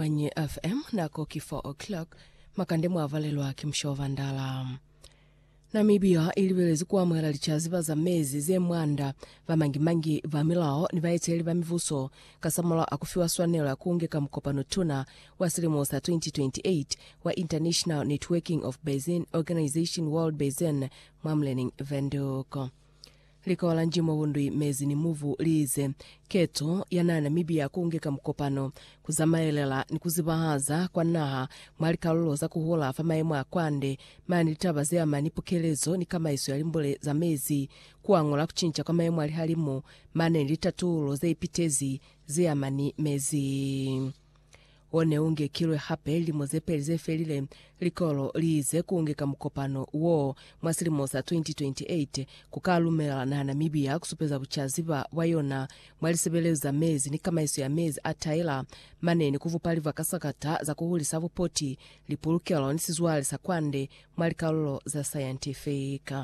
Manyi FM, nako ki 4 o'clock, makande mwa valelwa ki musha wa vandala. Namibia i libelezi ku amuhela licaziba za mezi ze mwanda ba mangi-mangi, ba milao ni baeteleli ba mibuso kasamulaho a ku fiwa swanelo ya ku ngeka mukopano tuna wa silimo sa 2028 wa International Networking of Basin Organization World Basin mwa Mleneng Windhoek. Likola njimo bundwi mezi ni mubu liize keto ya naha Namibia kungeka mukopano kuzamaelela ni kuzibahaza kwa naha mwa likalulo za kuhula fa maemo a kwande mane litaba zeama ni pukelezo ni kamaiso ya limbule za mezi, kuangula kucinca kwa maemo a lihalimu mane ni litatuulo zeipitezi zeama ni mezi. O ne u ngekilwe hape lilimo ze peli ze felile. Likolo li ize ku nge ka mukopano wo mwa silimo sa 2028 ku ka lumela naha Namibia ku supeza bucaziba bwa yona mwa lisebelezo za mezi ni kamaiso ya mezi a taila, mane ni ku vupa livakasakata za ku hulisa bupoti, lipulukelo ni sizwale sa kwande mwa likalulo za sayantifiki.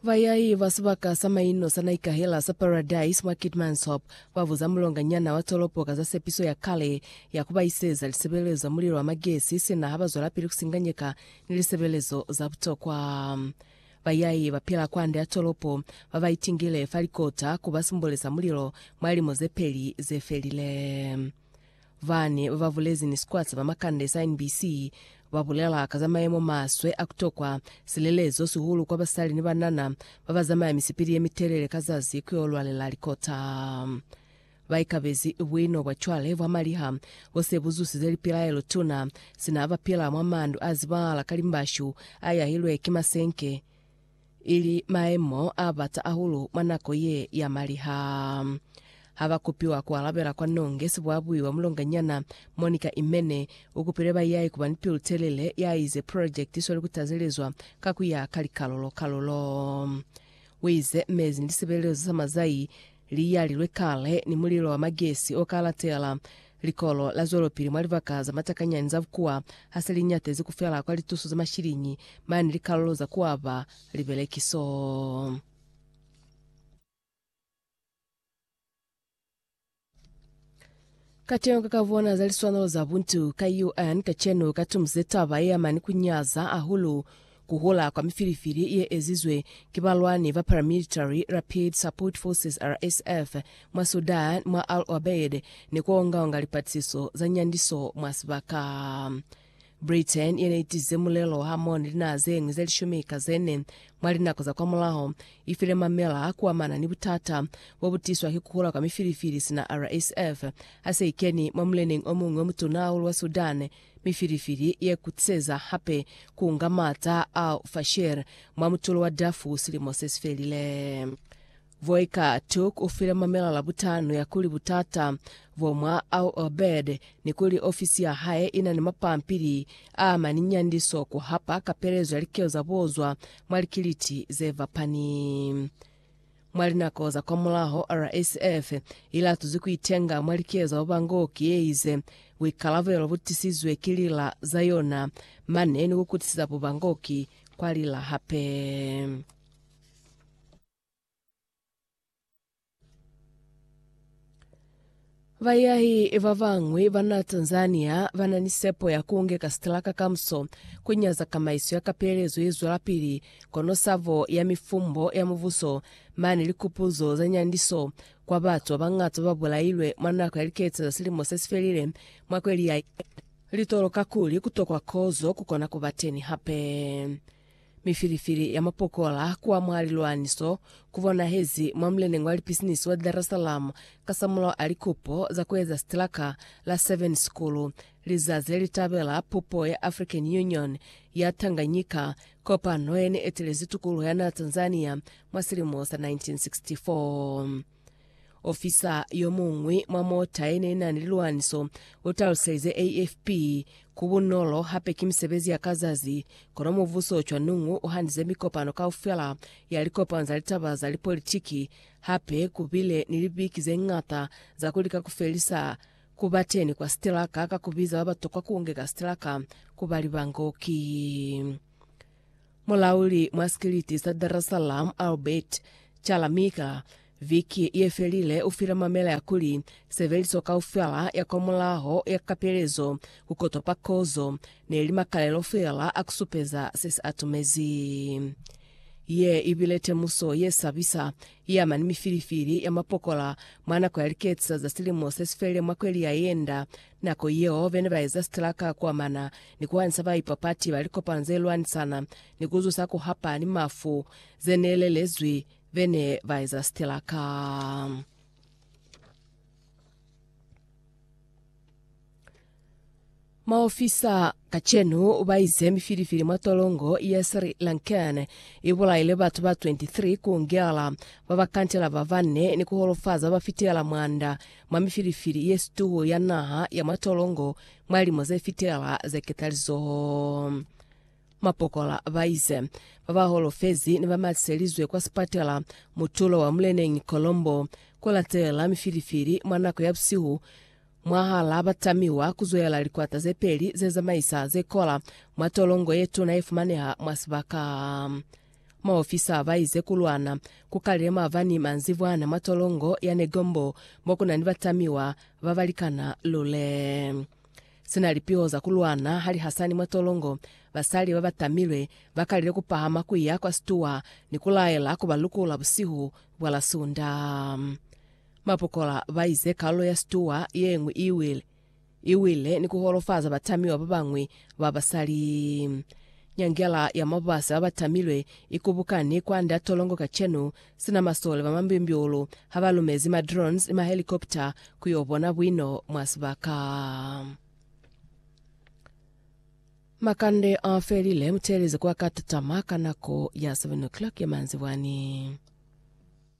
Bayai ba sibaka sa maino sa naikahela sa Paradise mwa Keetmanshoop ba buza mulonganyana wa tolopo ka za sepiso ya kale ya ku ba iseza lisebelezo za mulilo wa magesi sina ha ba zwelapili ku singanyeka ni lisebelezo za butokwa. Bayai ba pila kwande ya tolopo ba ba itingile fa likota ku ba simbole sa mulilo mwa lilimo ze peli ze felile. Bani ba ba bulezi ni sikwata ba makande sa NBC ba bulela ka za mayemo maswe a ku tokwa silelezo, sihulu kwa basali ni banana ba ba zamaya misipili ye mitelele ka zazi ku yo lwalela likota. Ba ikabezi buino bwa cwale bwa maliha bo se bu zusize lipilaelo tuna, sina ba pila mwa mandu a zibahala ka limbashu a yahilwe ki masenke, ili maemo a bata hahulu mwa nako ye ya maliha. Ha ba kupiwa ku alabela kwa nonge sibuabui wa mulonganyana Monica Imene u kupile ba yae ku ba ni pilu telele, ya ize projekiti i sweli ku tazelezwa ka ku ya ka likalulo-kalulo. U ize mezi ni lisebelezo za mazai Liyali lwe kale ni mulilo wa magesi o ka latela, likolo la zwelopili mwa libaka za matakanyani za bukuwa ha se li nyatezi ku fela kwa lituso za mashiliñi mani likalulo za ku aba libelekiso. Kacenu ka ka bona za liswanelo za buntu ka UN kacenu ka tumuze taba ye yamani ku nyaza hahulu ku hola kwa mifilifili ye ezizwe ki balwani ba Paramilitary Rapid Support Forces, RSF, mwa Sudan mwa Al Obeid ni ku onga-onga lipatisiso za nyandiso mwa sibaka. Britain ye ne itize mulelo hamoni linaha zeñwi ze lishumi ka zene mwa linako za kwamulaho, ifile mamela kuamana ni butata bo bu tiswa ki kuhula kwa mifilifili sina RSF ha se ikeni mwa muleneng omuñwi omutuna hahulu wa Sudan, mifilifili ye kutiseza hape kuunga maata a Al-Fashir mwa mutulo wa Darfur silimo sesifelile. Voika Took u file mamela la butano ya kuli butata bo mwa Al Obeid ni kuli ofisi ya hae i na ni mapampili a ma ni nyandiso ku hapa kapelezo ya likelo za bo zwa mwa likiliti ze fapani. Mwa linako za kwamulaho, RSF i latuzi ku itenga mwa likelo za ba bangoki ye ize, Buikalabelo bu tisizwe ki lila za yona mane ni ku kutisiza bubangoki kwa lila hape. Bayahi ba bañwi ba na Tanzania ba na ni sepo ya ku ngeka sitalaka kamuso, ku nyaza kamaiso ya kapelezo ye zwelapili, kono sabo ya mifumbo ya mubuso mane likupuzo za nyandiso kwa batu ba bañata ba ba bulailwe mwa nako ya liketa za silimo se si felile mwa kweli ya litolo kakuli ku tokwa kozo ku kona ku ba teni hape. Mifilifili ya mapokola kuwa mwa lilwaniso ku bonahezi mwa muleneñi wa lipisinisi wa Dar es Salaam kasamulaho a likupo za ku eza sitilaka la Seven Sikulu lizazi le li tabela pupo ya African Union ya Tanganyika, kopano ye ne etelezi tukuluho ya naa Tanzania mwa silimo sa 1964. Ofisa yo muñwi mwa mota ye ne i na ni lilwaniso u taluselize AFP, Ku bunolo hape ki misebezi ya ka zazi, kono mubuso cwa Nungwu u hanize mikopano kaufela ya likopano za litaba za lipolitiki, hape ku bile ni libiki ze ñata za ku lika ku felisa ku ba teni kwa sitelaka ka ku biza ba ba tokwa ku ngeka sitelaka ku ba libangoki. Mulauli mwa sikiliti sa Dar es Salaam Albert Chalamika viki ye felile u file mamela ya kuli sebeliso kaufela ya kwa mulaho ya kapelezo ku kotwa pa kozo ne li makalelo fela a ku supeza se si atumezi. Ye i bile temuso ye sabisa ye ama ni mifilifili ya mapokola mwa nako ya liketisa za silimo se si felile mwa kweli ya yenda Nako yeo bene ba eza sitraka ku amana ni ku hanisa ba ipapati ba likopano ze lwanisana ni ku zusa ku hapa ni mafu ze ne lelezwi bene ba eza sitraka. Maofisa kacenu ba ize mifilifili mwa tolongo ya Sri Lankan i bulaile batu ba 23 ku ngela ba ba kantela ba bane ni ku holofaza ba fitela mwanda mwa mifilifili ye situhu ya naha ya mwa tolongo mwa lilimo ze fitelela ze ketalizoho. Mapokola ba ize ba ba holofezi ne ba matiselizwe kwa sipatela mutulo wa muleneñi Colombo ku latelela mifilifili mwa nako ya busihu mwahal'a ba tamiwa ku zwelela likwata ze peli ze zamaisa ze kola mwa tolongo ye tuna ye fumaneha mwa sibaka Maofisa ba ize ku lwana ku kalile maabani manzibwana mwa tolongo ya Negombo mo ku na ni batamiwa ba ba likana lule. Sina lipiho za ku lwana ha li hasani mwa tolongo, basali ba ba tamilwe ba kalile ku pahama ku ya kwa situwa ni ku laela ku ba lukula busihu bwa la Sunda. Mapokola ba ize kalulo ya situwa ye ñwi i wile. i wile ni ku holofaza batamiwa ba bañwi ba basali. Nyangela ya mabasi ba ba tamilwe i kubukani kwand'a tolongo kacenu, sina masole ba mambyumbyulu ha ba lumezi ma drones ni mahelikopta ku yo bona buino mwa sibaka. Makande a felile, mu teeleze ku a ka tatama ka nako ya 7 o'clock ya manzibwani.